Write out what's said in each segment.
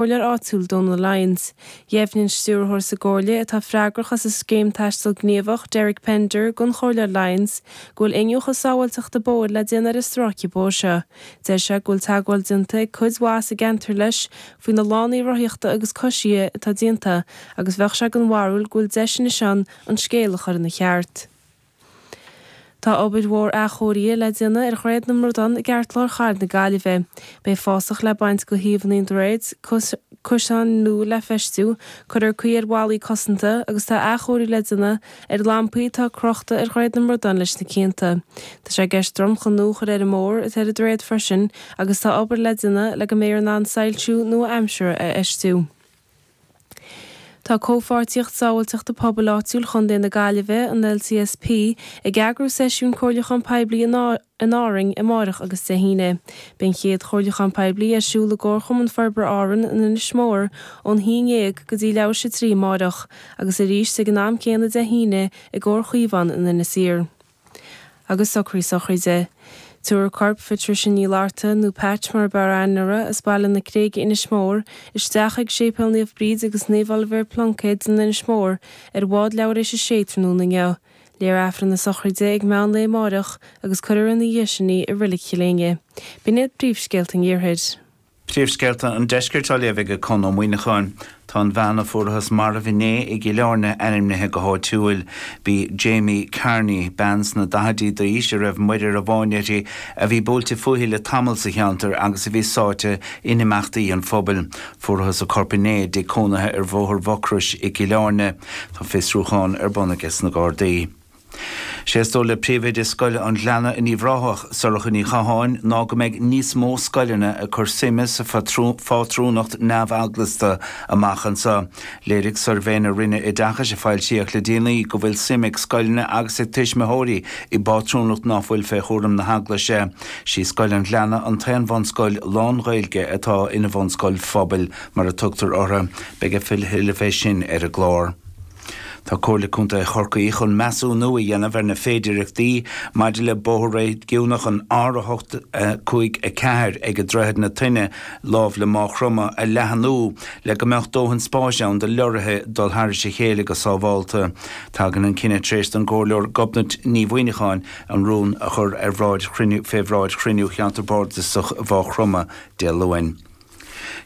gComhairleoir áitiúil Donal Lyons. Dheimhnigh an Stiúrthóir sa gComhairle atá freagrach as an Scéim Taisteal Gníomhach, Derek Pender, don Chomhairleoir Lyons go bhfuil iniúchadh sábháilteachta bóthair le déanamh ar an stráice bóthair seo. Deir sé go bhfuil teagmháil déanta ag cuid mhaith sa gceantar leis faoi na lánaí rothaíochta agus coisithe atá déanta agus bheadh sé den bharúil go bhfuil deis anois ann an scéal a chur ina cheart. Tá obair mhór athchóirithe le déanamh ar Dhroichead na mBradán i gceartlár Chathair na Gaillimhe. Beidh fásach le baint d'aghaidheanna an droichid, cosáin nua le feistiú, cuirfear caoi ar bhallaí cosanta agus tá athchóiriú le déanamh ar lampaí atá crochta ar Dhroichead na mBradán leis na cianta. Tá sé i gceist dromchla nua a chur ar an mbóthar atá ar an droichead freisin agus tá obair le déanamh le go mbeifear in ann soilsiú nua-aimsire a fheistiú. Tá Comhpháirtíocht Sábháilteachta Pobail Áitiúil Chontae na Gaillimhe, an LCSP, ag eagrú seisiún comhairliúchán poiblí in Árainn amáireach agus Dé hAoine. Beidh an chéad chomhairliúchán poiblí ar siúl i gComharchumann Forbartha Árann in Inis Mór ón hAoine dhéag go dtí leathuair tar éis a trí amáireach agus arís ag an am céanna Dé hAoine i gComhar Caomhán in Inis Oírr. agus socrú sochraide. Tabharfar corp Phatricia Ní Fhlatharta, nó Patch mar a b'fhearr aithne uirthi, as Baile na Creige, Inis Mór, isteach chuig Séipéal Naomh Bríd agus Naomh Oilibhéar Pluincéad in Inis Mór ar bhád leathuair tar éis a sé tráthnóna inniu. Léifear Aifreann na sochraide ag meán lae amáireach agus cuirfear ina dhiaidh sin í i Reilig Chill Éinne. B'in iad príomhscéalta an Iarthair. Príomhscéalta an Deiscirt á léamh ag Conn Ó Muíneacháin. Tá an bhean a fuarathas marbh inné i gCill Áirne ainmnithe go háitiúil. B'í Jamie Carney, bean sna daichidí d'aois a raibh muirear bainte uirthi, a bhí buailte fúithi le tamall sa cheantar agus a bhí sáite in imeachtaí an phobail. Fuarathas a corp inné i dtigh cónaithe ar Bhóthar Mhucrois i gCill Áirne. Tá fiosrúchán ar bun aiges na Gardaí. Sé is dóigh le Príomhoide Scoil an Ghleanna in Uíbh Ráthach, Sorcha Ní Chatháin, ná go mbeidh níos mó scoileanna ag cur suime sa phátrúnacht neamheaglasta amach anseo. Léirigh suirbhé na Roinne Oideachais a foilsíodh le déanaí go bhfuil suim ag scoileanna agus ag tuismitheoirí i bpátrúnacht ná fuil fé chúram na hEaglaise. Sí Scoil an Ghleanna an t-aon bhunscoil lán-Ghaeilge atá ina bhunscoil phobail, mar a tugtar orthu. Beidh a thuilleadh fé sin ar an gclár. Tá Comhairle Contae Chorcaí chun measúnú a dhéanamh ar na féidireachtaí maidir le bóthar réigiúnach an R8-5-4 ag Droichead na Toinne lámh le Máigh Chromtha a leathnú le go mbeadh dóthain spáis ann do leoraithe dul thar a chéile go sábháilte. Tagann an cinneadh tar éis don gComhairleoir Gobnait Ní Mhuíneacháin an rún a chur ar bhráid chruinniú fé bhráid chruinniú Cheantar Bardasach Mháigh Chromtha Dé Luain.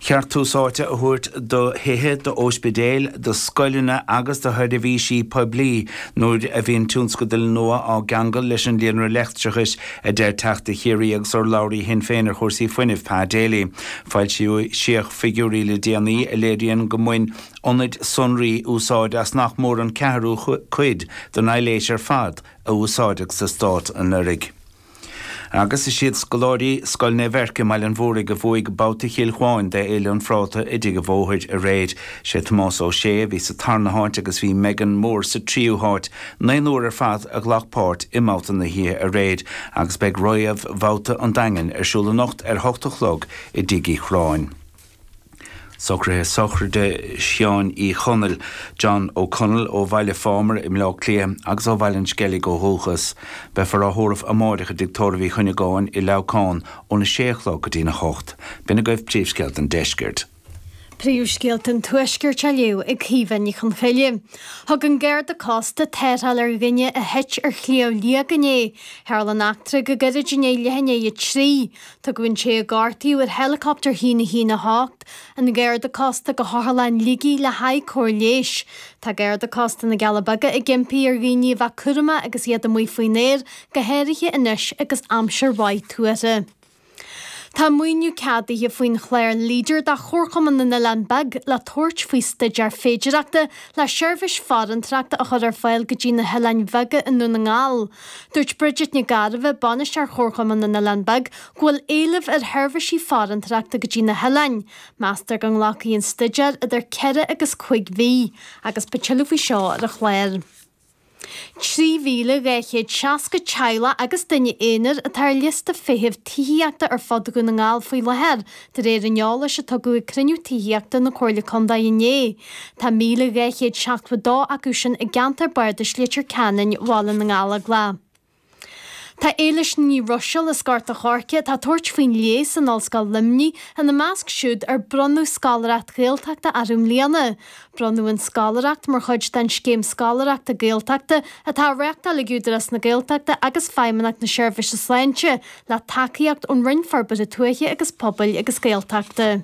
Cheart tús áite a thabhairt do thithe, d'óispidéil, do scoileanna agus do sheirbhísí poiblí nuair a bhíonn tionscadail nua á gceangal leis an líonra leictreachais, a deir Teachta Chiarraí agus urlabhraí Shinn Féin ar chúrsaí fuinnimh, Pa Daly. Foilsíodh figiúirí le déanaí a léiríonn go mbain ionaid sonraí úsáid as nach mór an ceathrú cuid den aibhléis ar fad a úsáideadh sa Stát anuraidh. Agus is iad scoláirí Scoil Naomh Eirc i mBaile an Mhúraigh a bhuaigh Babhta Chill Chuáin d'Fhéile an Phráta i dTigh a' Bhóthair aréir. Sé Tomás Ó Sé a bhí sa tarna háit agus bhí Megan Moore sa tríú háit. Naonúr ar fad a ghlac páirt i mbabhta na hoíche aréir agus beidh réamhbhabhta an Daingin ar siúl anocht ar a hocht a chlog i dTigh Uí Chorráin. Socruithe Sochraide Sheáin Uí Chonaill, John O'Connell, ó Bhaile Phámar i mBleá Cliath agus ó Bhaile an Sceilg ó dhúchas. Beifear á thórramh amáireach i dTigh Tórraimh Uí Chuinneagáin i Leamhcán óna sé a chlog go dtí'n a hocht. B'in agaibh Príomhscéalta an Deiscirt. Príomhscéalta an Tuaiscirt á léamh ag Caoimhe Ní Chonghaile. Thug an Garda Cósta tarrtháil ar dhuine a thit ar Shliabh Liag inné. Tharla an eachtra go gairid i ndiaidh leath i ndiaidh a trí. Tugadh an té a gortaíodh ar héileacaptar a haon a haon a hocht an Garda Cósta go hOtharlann Shligigh le haghaidh cóir leighis. Tá Garda Cósta na gCealla Beaga ag impí ar dhaoine a bheith cúramach agus iad amuigh faoin aer go háirithe anois agus aimsir mhaith tuartha. Tá maoiniú ceadaithe faoin chlár Leader do Chomharchumann na nOileán Beag le tabhairt faoi staidéar féidireachta le seirbhís farantóireachta a chur ar fáil go dtí na hOileáin Bheaga i nDún na nGall. Dúirt Bridget Nic Gairbheith, Bainisteoir Chomharchumann na nOileán Beag, go bhfuil éileamh ar sheirbhísí farantóireachta go dtí na hoileáin. Meastar go nglacfaidh an staidéar idir ceithre agus cúig mhí agus beidh tuilleadh faoi seo ar an chlár. 3,260 teaghlach agus duine aonair atá ar liosta feithimh tithíochta ar fud Dhún na nGall faoi láthair, De réir an eolais a tugadh ag cruinniú tithíochta na Comhairle Contae inné, tá 1,272 acu sin i gceantar bardais Leitir Ceanainn, Bhaile na nGallóglach. Tá Éilis Ní Ruiséil as Gort a' Choirce atá ag tabhairt faoin leigheas in Ollscoil Luimnigh ina measc siúd ar bronnadh scoláireacht Ghaeltachta orthu i mbliana, Bronnadh an Scoláireacht mar chuid den Scéim Scoláireachta Gaeltachta atá á reáchtáil ag Údarás na Gaeltachta agus Feidhmeannacht na Seirbhíse Sláinte le tacaíocht ón Roinn Forbartha Tuaithe agus Pobail agus Gaeltachta.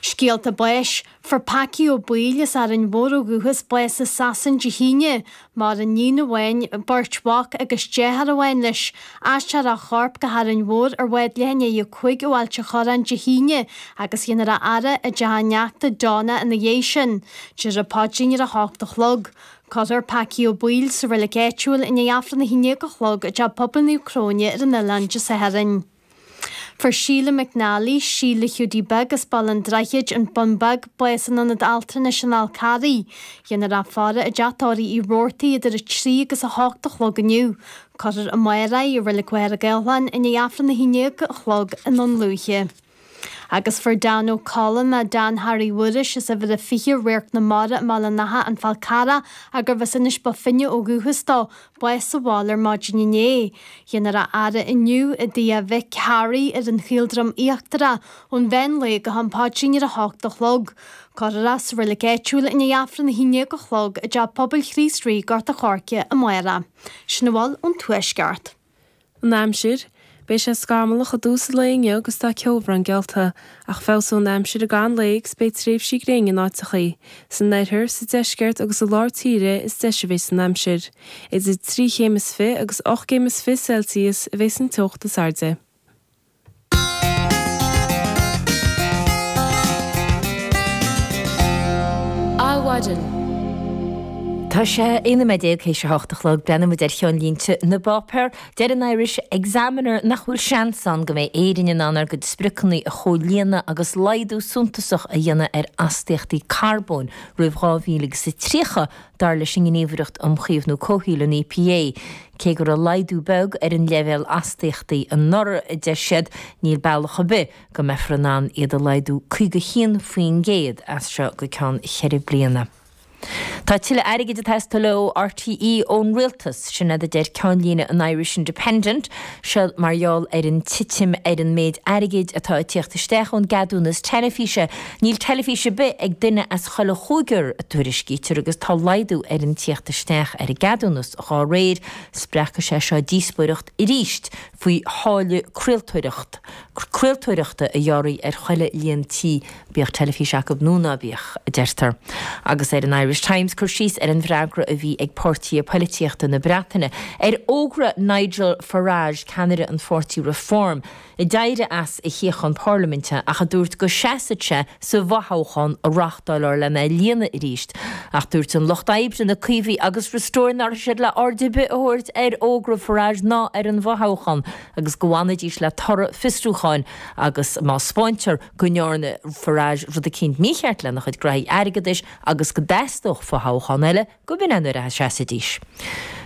Scéalta Báis, fuair Packy Ó Baoill as Árainn Mhór ó dhúchas bás i Sasain Dé hAoine. Maireann iníon amháin, beirt mhac agus deartháir amháin leis. Aistreofar a chorp go hÁrainn Mhór ar bhád leath i ndiaidh a cúig ó Ailt an Chorráin Dé hAoine agus dhéanfar a fhaire i dteach a neachta Donna ina dhiaidh sin, déarfar an paidrín ar a hocht a chlog. Cuirfear Packy Ó Baoill sa reilic áitiúil i ndiaidh Aifreann a haon déag a chlog i dTeach Pobail Naomh Cróine ar an oileán Dé Sathairn. Fuair Síle McNally, Síle Hiúdaí Beag as Baile an Droichid, An Bun Beag, bás in Ionad Altranais an Fhál Carraigh. Dhéanfar a faire i dteach tórraimh Uí Rabhartaigh idir 3 agus 8 a chlog inniu. Cuirfear amárach í i Reilig Mhachaire Gathlán i ndiaidh Aifreann a haon déag a chlog i nDún Lúiche. Agus fuair Dan Ó Colla, Dan Harry Mhuiris, as Uimhir a 20 Radharc na Mara i mBaile an Átha, An Fál Carrach, ach gurbh as Inis Bó Finne ó dhúchas dó, bás sa bhaile ar maidin inné. Dhéanfar a fhaire inniu i dTigh Mhic Harry ar an Chaoldroim Íochtarach ón mheán lae go ham paidrín ar a hocht a chlog. Cuirfear é sa reilig áitiúil i ndiaidh Aifreann a haon déag a chlog i dTeach Pobail Chríost Rí, Gort a Choirce, amárach. Sin a bhfuil ón Tuaisceart. An aimsir, Beidh sé scamallach i dtús an lae inniu agus tá ceobhrán geallta, ach feabhsóidh an aimsir i gcaitheamh an lae agus beidh tréimhsí gréine in áiteachaí. San oirthear, sa deisceart agus i lár tíre is deise a bheas an aimsir. Idir trí chéim is fiche agus ocht gcéim is fiche Celsius a bheas an teocht is airde. Adhmhaidin. Tá sé 19 nóiméad théis a hocht a chlog. Breathnaímid ar cheannlínte na bpáipéar. Deir an Irish Examiner nach bhfuil seans ann go mbeidh Éirinn in ann ár gcuid spriocanna a chomhlíonadh agus laghdú suntasach a dhéanamh ar astaíochtaí carbóin roimh 2030 Dar leis an nGníomhaireacht um Chaomhnú Comhshaoil, an EPA, cé go raibh laghdú beag ar an leibhéal astaíochtaí anuraidh, a deir siad, níl bealach ar bith go mbeifear in ann iad a laghdú 51% as seo go ceann ceithre bliana. Tá tuilleadh airgid ag teastáil ó RTÉ ón rialtas, sin é a deir ceannlíne an Irish Independent, seo mar gheall ar an titim ar an méid airgid atá ag tíocht isteach ón gceadúnas teilifíse Níl teilifís ar bith ag duine as chuile chúigear, a tuairiscítear, agus tá laghdú ar an tíocht isteach ar an gceadúnas dá réir. Spreagfaidh sé seo díospóireacht arís faoi tháille craoltóireachta a ghearradh ar chuile líon tí, bíodh teilifís acu nó ná bíodh, a deirtear. Agus ar an Irish Times cur síos ar an bhfreagra a bhí ag páirtithe poilitíochta na Breataine ar fhógra Nigel Farage, ceannaire an pháirtí Reform, a d'éirigh as a shuíochán Parlaiminte ach a dúirt go seasfadh sé sa bhfothoghchán a reáchtáilfear len é a líonadh arís. Ach dúirt an Lucht Oibre, na Caomhaigh agus Restore nach raibh siad le aird ar bith a thabhairt ar fhógra Farage ná ar an bhfothoghchán agus go bhfanfaidís le toradh fiosrúcháin agus má spáintear go ndearna Farage rud eicínt mícheart lena chuid graithí airgeadais agus go dteastódh fothoghchán eile, go minic nuair a sheasaidís.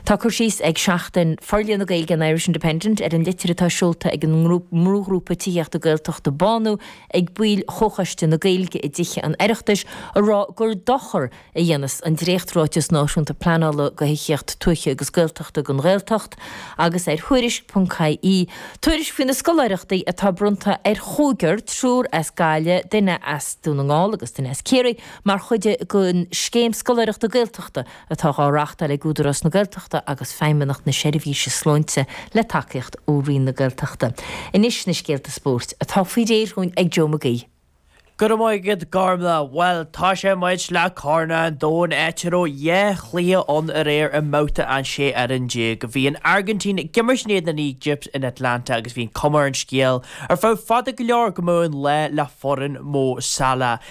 Tá cur síos ag Seachtain Forlíonadh na Gaeilge an Irish Independent ar an litir atá seolta ag an mbrúghrúpa tithíochta Gaeltachta Bánú ag baill Chomhchoiste na Gaeilge i dTithe an Oireachtais a rá gur dochar a dhéanas an dréacht-Ráiteas Náisiúnta Pleanála do thithíocht tuaithe agus Gaeltachta don Ghaeltacht agus ar Thuairisc.ie tuairisc faoi na scoláireachtaí atá bronnta ar chúigear, triúr as Gaillimh, duine as Dún na nGall agus duine as Ciarraí, Mar chuid den Scéim Scoláireachta Gaeltachta atá dhá reachtáil ag Údarás na Gaeltachta agus Feidhmeannacht na Seirbhíse Sláinte le tacaíocht ó Roinn na Gaeltachta. Anois na scéalta spóirt atá faoi réir dhúinn ag Joe McGee. Go raibh maith agat Gormlaith. Bhuel tosóidh muid le Corn an Domhain áit a raibh dhá chluiche ann aréir i mbabhta an 16 fhoireann. Bhí an Airgintín ag imirt in éadan na hÉigipte in Atlanta agus bhí an cuma ar an scéal ar feadh fada go leor go mbeadh an lá le foireann Mo Salah.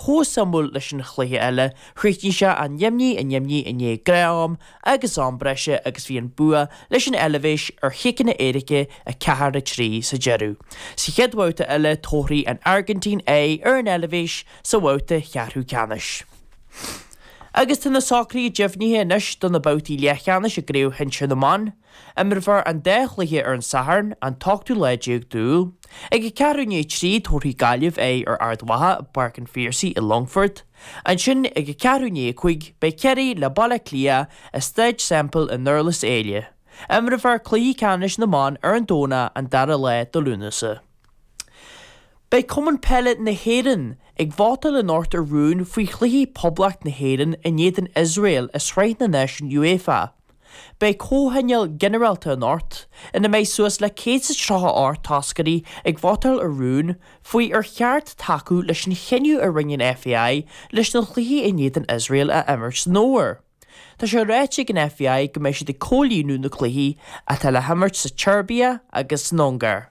chomh suimiúil leis an chluiche eile, chríochnaigh sé a náid a náid i ndiaidh gnáth-am agus am breise agus bhí an bua leis an Eilbhéis ar chiceanna éirice, 4, 3, sa deireadh. Sa chéad bhabhta eile tabharfaidh an Airgintín aghaidh ar an Eilbhéis sa bhabhta cheathrú ceannais. Agus tá na socruithe deimhnithe anois do na babhtaí leathcheannais i gCraobh Shinsir na mBan. Imreofar an dá chluiche ar an Satharn, an t-ochtú lá déag d'Iúil. Ag a ceathrú i ndiaidh a trí, tabharfaidh Gaillimh aghaidh ar Ard Mhacha i bPáirc an Phiarsaigh sa Longfort. Ansin, ag a ceathrú i ndiaidh a cúig, beidh Ciarraí le Baile Átha Cliath i Staid Semple i nDurlas Éile. Imreofar cluichí ceannais na mban ar an Domhnach an dara lá de Lúnasa. Beidh Cumann Peile na hÉireann ag vótáil anocht ar rún faoi chluichí Poblacht na hÉireann in éadan Iosrael i Sraith na Náisiún UEFA. Beidh comhthionól ginearálta ann anocht ina mbeidh suas le céad is tríocha a hocht toscaire ag vótáil ar rún faoi ar cheart tacú leis an chinneadh a rinne an FAI leis na cluichí in éadan Iosrael a imirt san fhómhar. Tá sé ráite ag an FAI go mbeidh siad ag comhlíonadh na gcluichí atá le himirt sa tSeirbia agus san Ungáir.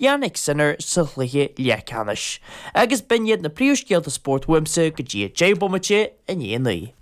Jannik Sinner sa chluiche leathceannais agus b'in iad na príomhscéalta spóirt uaimse go dtí a 10 bomaite i ndiaidh a naoi.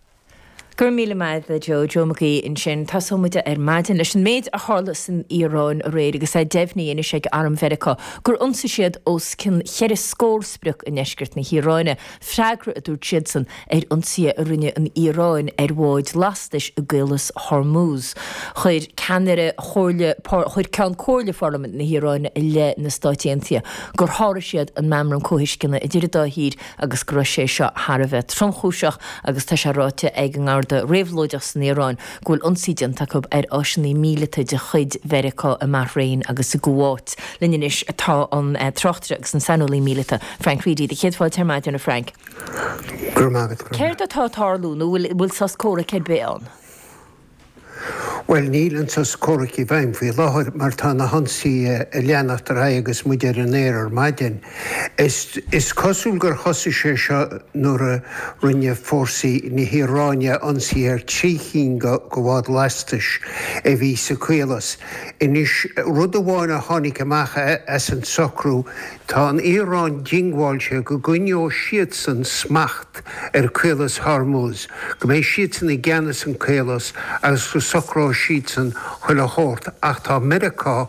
Go raibh míle maith agat, Joe. Joe McGee ansin. Tosóidh muid ar maidin leis an méid a tharla san Iaráin aréir agus é deimhnithe anois ag Arm Mheiriceá gur ionsaigh siad os cionn ceithre scór sprioc i ndeisceart na hIaráine. Freagra, a dúirt siadsan, ar ionsaithe a rinne an Iaráin ar bháid lastais i gCaolas Hormuz. Chuir ceannaire comhairle, chuir Ceann Comhairle Pharlaimint na hIaráine i leith na Stát Aontaithe gur sháraigh siad an Meamram Comhthuisceana idir an dá thír agus go raibh sé seo thar a bheith tromchúiseach agus tá sé ráite ag an nGarda Réabhlóideach san Iaráin go bhfuil ionsaí déanta acu ar áiseanna míleata de chuid Mheiriceá i mBahrain agus i gCuáit. Linn anois tá an tráchtaire agus an saineolaí míleata, Frank Reidy. Do chéad fáilte ar maidin, a Frank. Go raibh maith agat, go raibh maith. Céard atá ag tarlú nó an bhfuil sos comhraic ar bith ann? Bhuel, níl an sos comhraic i bhfeidhm faoi láthair mar tá na hionsaithe ag leanacht ar aghaidh agus muid ar an aer ar maidin. Is cosúil gur thosaigh sé seo nuair a rinne fórsaí na hIaráine ionsaí ar trí chinn de bháid lastais a bhí sa Chaolas. Anois, rud amháin a tháinig amach as an socrú, tá an Iaráin diongbháilte go gcoinneoidh siadsan smacht ar Chaolas Hormuz, go mbeidh siadsan i gceannas sa Chaolas agus go socróidh siadsan chuile shórt ach tá Meiriceá,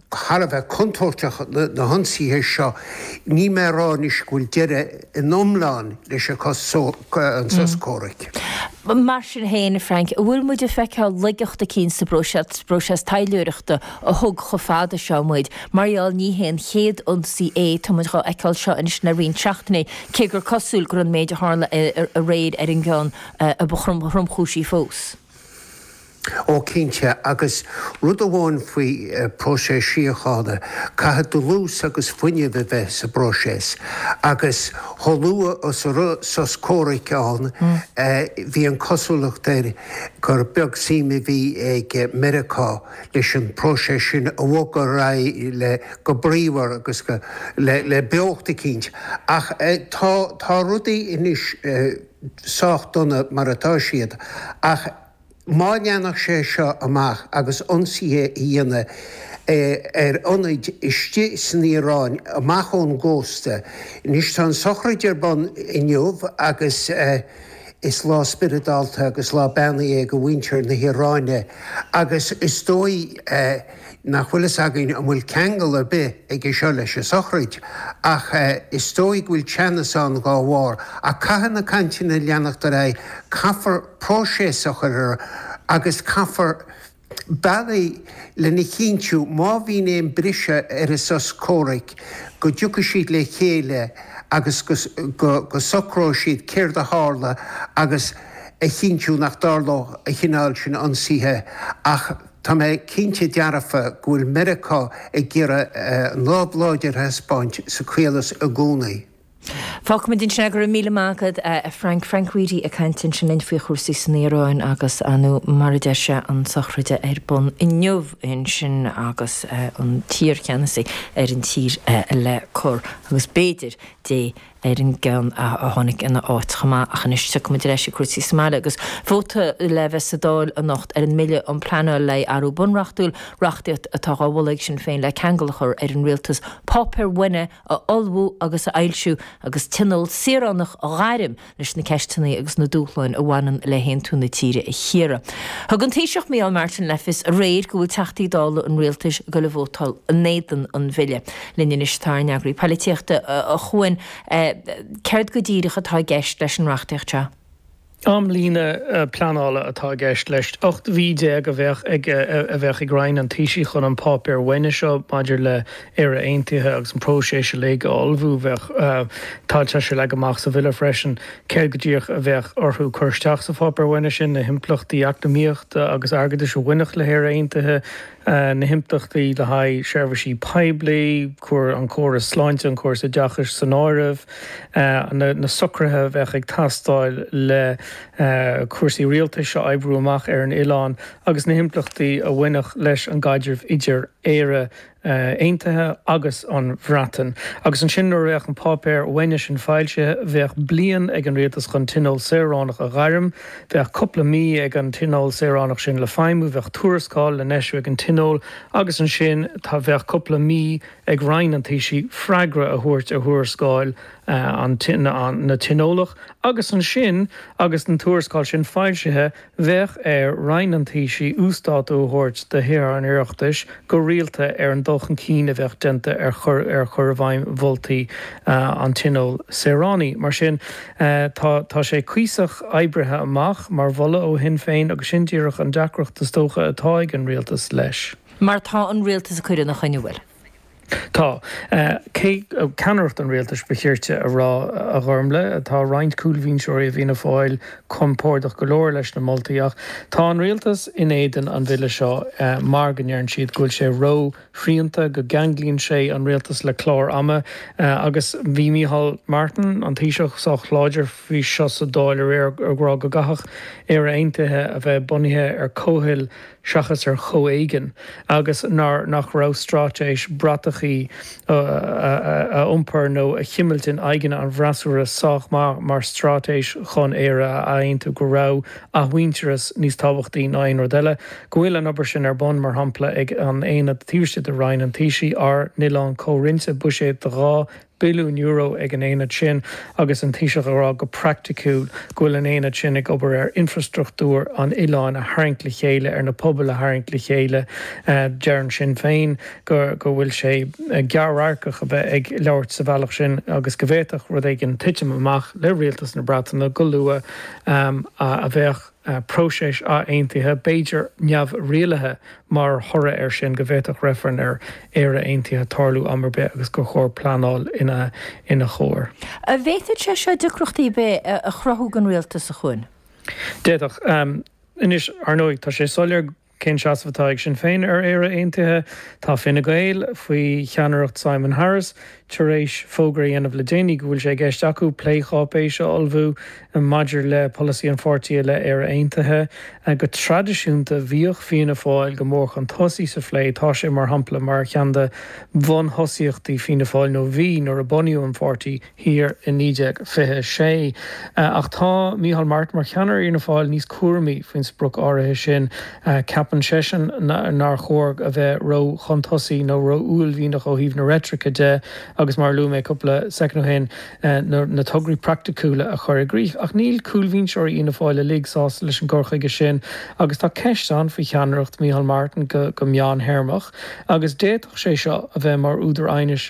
thar a bheith contúirteach na hionsaithe seo, níl mé ag rá anois go bhfuil deireadh go hiomlán leis an sos comhraic. Mar sin féin, a Frank, an bhfuil muid ag feiceáil laigeacht eicínt sa bpróiseas taidhleoireachta a thug chomh fada seo muid? Mar gheall, ní hé an chéad ionsaí é, tá muid dhá fheiceáil seo anois le roinnt seachtainí, cé gur cosúil gurb é an méid a tharla aréir an ceann a ba thromchúisí fós. Ó cinnte, agus rud amháin faoi próiseas síochána, caithfidh dlús agus fuinneamh a bheith sa bpróiseas, agus chomh luath is a raibh sos comhraic ann bhí an cosúlacht air gur beag suim a bhí ag Meiriceá leis an bpróiseas sin a bhogadh ar aghaidh le go bríomhar agus le beocht eicínt. Ach tá, tá rudaí anois sách dona mar atá siad, ach má leanfadh sé seo amach agus ionsaithe a dhéanamh ar ionaid istigh san Iaráin amach ón gcósta, anois tá an tsochraid ar bun inniu agus is lá spioradálta agus lá beannaithe do mhuintir na hIaráine agus is dóigh, nach bhfuil fhios againn an bhfuil ceangal ar bith aige seo leis an sochraid ach is dóigh go bhfuil teannas ann dhá bharr. Ach caithfidh na cainteanna leanacht ar aghaidh, caithfear próiseas a chur ar agus caithfear bealaí lena chinntiú má bhíonn aon briseadh ar an sos comhraic go dtiocfaidh siad le chéile agus go socróidh siad céard a tharla agus a chinntiú nach dtarlóidh an cineál sin ionsaithe ach Tá mé cinnte dearfa go bhfuil Meiriceá ag iarraidh an lámh láidir a thaispeáint sa Chaolas i gcónaí. Fágfaimid ansin é. Go raibh míle maith agat a Frank. Frank Reidy ag caint ansin linn faoi chúrsaí san Iaráin agus, nó mar a deir sé, an tsochraide ar bun inniu ansin agus an t-iarcheannasaí ar an tír le cur agus b'fhéidir Dé ar an gceann a tháinig in a áit chomh maith ach anois tiocfaimid ar ais ag cúrsaí sa mbaile agus vóta le bheith sa Dáil anocht ar an mBille um Pleanáil le athrú bunreachtúil, reachtaíocht atá dhá mholadh ag Sinn Féin le ceangal a chur ar an Rialtas páipéar uaine a ullmhú agus a fhoilsiú agus Tionól Saoránach a ghairm leis na ceisteanna agus na dúshláin a bhaineann le haontú na tíre a chíoradh. Thug an Taoiseach Micheál Martin le fios aréir go bhfuil Teachtaí Dála an Rialtais ag dul a vótáil in éadan an Bhille. linn anois atá ár n-eagraí polaitíochta a Chuain Céard go díreach atá i gceist leis an reachtaíocht seo? Amlíne pleanála atá i gceist leis. 18 mhí a bheadh ag a bheadh ag Roinn an Taoisigh chun an Páipéar Uaine seo maidir le Éire Aontaithe agus an próiseas uilig a ullmhú. Bheadh Tá sé leagtha amach sa Bhille freisin céard go díreach a bheadh orthu cur isteach sa Pháipéar Uaine sin, na himpleachtaí eacnamaíochta agus airgeadais a bhainfeadh le hÉire Aontaithe, na himpleachtaí le haghaidh seirbhísí poiblí, an córas sláinte, an córas oideachais san áireamh, na socruithe a bheadh ag teastáil le cúrsaí rialtais a oibriú amach ar an oileán agus na himpleachtaí a bhainfeadh leis an gcaidreamh idir Éire aontaithe agus an Bhreatain. Agus ansin nuair a bheadh an páipéar uaine sin foilsithe, bheadh bliain ag an Rialtas chun Tionól Saoránach a ghairm, Bheadh cúpla mí ag an Tionól Saoránach sin le feidhmiú, bheadh tuarascáil le n-eisiú ag an Tionól agus ansin tá bheadh cúpla mí ag Roinn an Taoisigh freagra a thabhairt ar thuarascáil an na Tionólach agus ansin agus an tuarascáil sin foilsithe bheadh ar Roinn an Taoisigh uasdátú a thabhairt do Thithe an Oireachtais go rialta ar an dul chun cinn a bheadh déanta ar chur i bhfeidhm mholtaí an Tionóil Saoránaigh. Mar sin. Tá, tá, tá sé cuíosach oibrithe amach mar mholadh ó Shinn Féin agus sin díreach an deacracht is dócha atá ag an Rialtas leis. Mar tá an Rialtas ag cur ina choinne, an bhfuil? Tá. Cé, ceannaireacht an Rialtais ba chirte a rá, a Ghormfhlaith. Tá roinnt cúlbhinseoirí i bhFianna Fáil compordach go leor leis na moltaí ach tá an Rialtas in éadan an Bhille seo mar go ndeireann siad go bhfuil sé ró, srianta, go gceanglaíonn sé an Rialtas le clár ama agus bhí Micheál Martin, an Taoiseach, sách láidir faoi seo sa Dáil aréir ag rá go gcaithfeadh Éire Aontaithe a bheith bunaithe ar comhthoil seachas ar chomhéigean agus nár nach raibh straitéis bratachaí a iompar nó a chimilt in aghaidheanna an bhfreasúra sách maith mar straitéis chun Éire a aontú go raibh athmhuintearas níos tábhachtaí ná aon rud eile, go bhfuil an obair sin ar bun, mar shampla, ag an Aonad áirithe de Roinn an Taoisigh, ár n-oileán comhroinnte, buiséad de €2 billiún ag an Aonad sin, agus an Taoiseach ag rá go praiticiúil go bhfuil an Aonad sin ag obair ar infreastruchtúr an oileáin a tharraingt le chéile, ar na pobail a tharraingt le chéile. Deireann Sinn Féin go bhfuil sé gearr-radharcach a bheith ag labhairt sa bhealach sin agus go bhféadfadh rud éigin titim amach le Rialtas na Breataine go luath. a mbeadh próiseas ath-aontaithe, b'fhéidir neamhrialaithe, mar thoradh air sin, go bhféadfadh reifreann ar Éire Aontaithe tarlú am ar bith agus gur chóir pleanáil ina chomhair. An bhféadfadh sé seo deacrachtaí ar bith a chruthú don Rialtas seo chugainn? D'fhéadfadh. Anois, ar ndóigh, tá sé soiléir go. Cén seasamh atá ag Sinn Féin ar Éire Aontaithe? Tá Fine Gael, faoi cheannaireacht Simon Harris, tar éis fógra a dhéanamh le déanaí go bhfuil sé i gceist acu plécháipéis a ullmhú maidir le polasaí an pháirtí i leith Éire Aontaithe. Go traidisiúnta, bhíodh Fianna Fáil go mór chun tosaigh sa phlé. Tá sé, mar shampla, mar cheann de bhunthosaíochtaí Fianna Fáil, nó bhí nuair a bunaíodh an pháirtí, thiar i 1926. Ach tá Micheál Martin, mar cheannaire Fhianna Fáil, níos cúramaí faoin sprioc áirithe sin. Ceapann seisean nár chóir a bheith ró-chun-tosaigh nó ró-uaillmhianach ó thaobh na reitrice de agus, mar a luaigh mé cúpla soicind ó shin, na tograí praiticiúla a chur i gcrích. Ach níl cúlbhinseoirí Fhianna Fáil uilig sásta leis an gcur chuige sin agus tá ceist ann faoi cheannaireacht Micheál Martin go meán-théarmach agus d'fhéadfadh sé seo a bheith mar údar aighnis